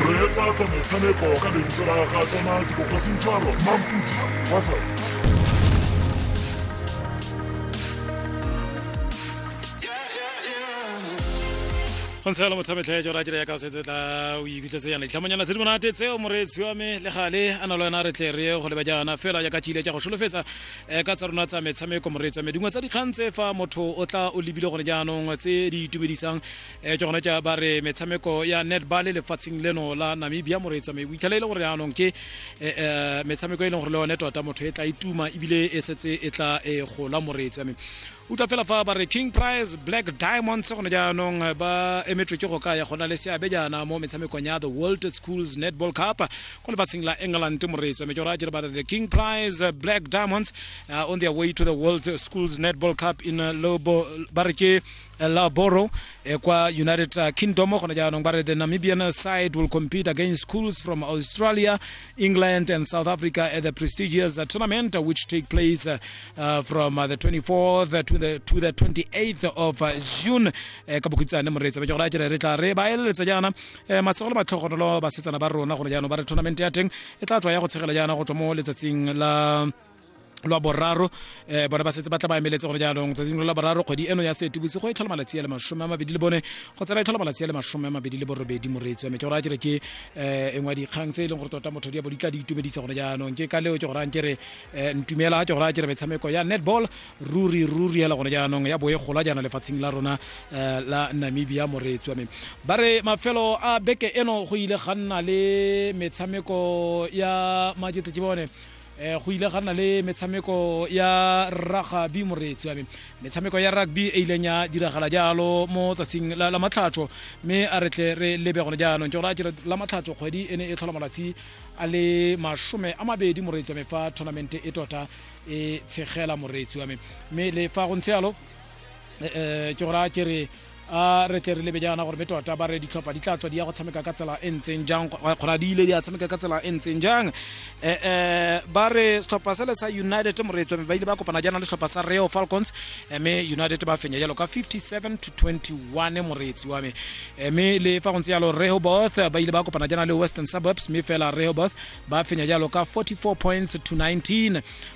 reetsa tsa motshameko ka lentswe la ga tona dikokosintshwaro mampudi watsa go ntshela motshametlhe jo ra dira ya ka setse tla o ikutletse yana ditlhamonyana tse di monate tseo moreetsi wa me le gale a na le wena re tle re ye go leba jaana fela jaaka tšile tša go solofetsa um ka tsa rona tsa metshameko moreetsi wa me dingwe tsa dikgang tse fa motho o tla o lebile gone jaanong tse di itumedisang e ke gone tša ba re metshameko ya netball lefatsheng leno la namibia moreetswa me boitlhela e le gore yaanong ke eh, eh, metshameko e leng gore le yone tota motho e tla ituma e ebile e setse e tla e gola moreetswa me utlwa fela fa ba re king prize black diamonds gone jaanong eh, ba emetswe ke go ka ya gona le seabe jaana mo metshamekong ya the world schools netball cup ko lefatsheng la england moreetswa me ke gore a jere ba re the king prize eh, black diamonds uh, on their way to the world schools netball cup in uh, lobo ba re ke Laboro eh, kwa United uh, Kingdom gone jaanong ba re the Namibian side will compete against schools from Australia, England and South Africa at the prestigious uh, tournament uh, which take place uh, uh, from uh, the 24th to the to the 28th of uh, June eh, ka bokhutshane moreetsa ba jogora jere re tla re ba eletsa jaana eh, masegolo ba tlhogonolo ba setsana ba rona gone jaanong ba re tournament ya teng e tla tswa ya go tshegela jaana go tswa mo letsatsing la lwa boraro um bone ba setse ba tla ba emeletse gone jaanong tsatsing la boraro kgwedi eno ya seetebosigo e tlhola malatsi a le masome a mabedi le bone go tsena e tlhola malatsi a le masome a mabedi le borobedi moreetsi wa me ke gore a kere ke um e ngwe dikgang tse e leng gore tota motho di bo di tla di itumedisa gone jaanong ke ka leo ke gore a nkere um ntumela ke gore a kere metshameko ya netball ruri ruri ela gone jaanong ya boe gola jaana lefatsheng la rona um la namibia moreetsi wa me ba re mafelo a beke eno go ile ga nna le metshameko ya maketle ke bone um go ile ga nna le metshameko ya ragabi moreetsi wa me metshameko ya rugby e ileng ya diragala jalo mo tsatsing la matlhatsho mme a re tle re lebe gone jaanong ke gore a jere la matlhatsho kgwedi e ne e tlhola malatsi a le masome a mabedi moreetsi wa me fa tournament e tota e tshegela moreetsi wa me mme le fa go ntse yalo um ke gora ke re a re tle re lebe jaana gore be tota ba re ditlhopha di tla tswa di ya go tshameka ka tsela e ntseng jang kgora di ile di a tshameka ka tsela e ntseng jang um ba re setlhopha sele sa united moreetswa mme ba ile ba kopana jaana le setlhopha sa reo falcons mme united ba fenya jalo ka 57 to 21 moreetsi wa me mme le fa go ntse jalo rehoboth ba ile ba kopana jaana le western suburbs mme fela rehoboth ba fenya jalo ka 44 points to 19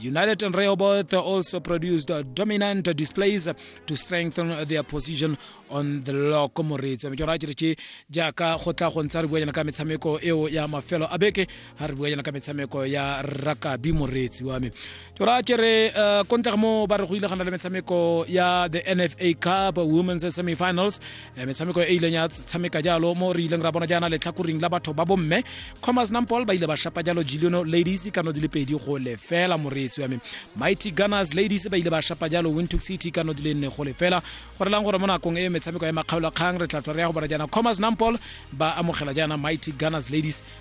United and Rehoboth also produced dominant displays to strengthen their position on the log ko moreetsi wa mekero a kere ke jaaka go tla go ntsha re buanyana ka metshameko eo ya mafelo a beke ga re buanyana ka metshameko ya rakabi moreetsi wa me kero a kere uh, kontlege mo ba re go ile gana le metshameko ya the nfa cup women's semifinals Eh, metshameko e ileng ya tshameka jalo mo re ileng ra bona jaana letlhakoring la batho ba bomme commerce nampol ba ile ba shapa jalo giliono ladies kano di le pedi go lefela moreetsi ya me mighty gunners ladies ba ile ba shapa jalo wintook city kano di le nne go lefela go relang gore mo nakong e metshameko ya makgaolakgang re tla tswa re ya go bona jaana commerce nampol ba amogela jaana mighty gunners ladies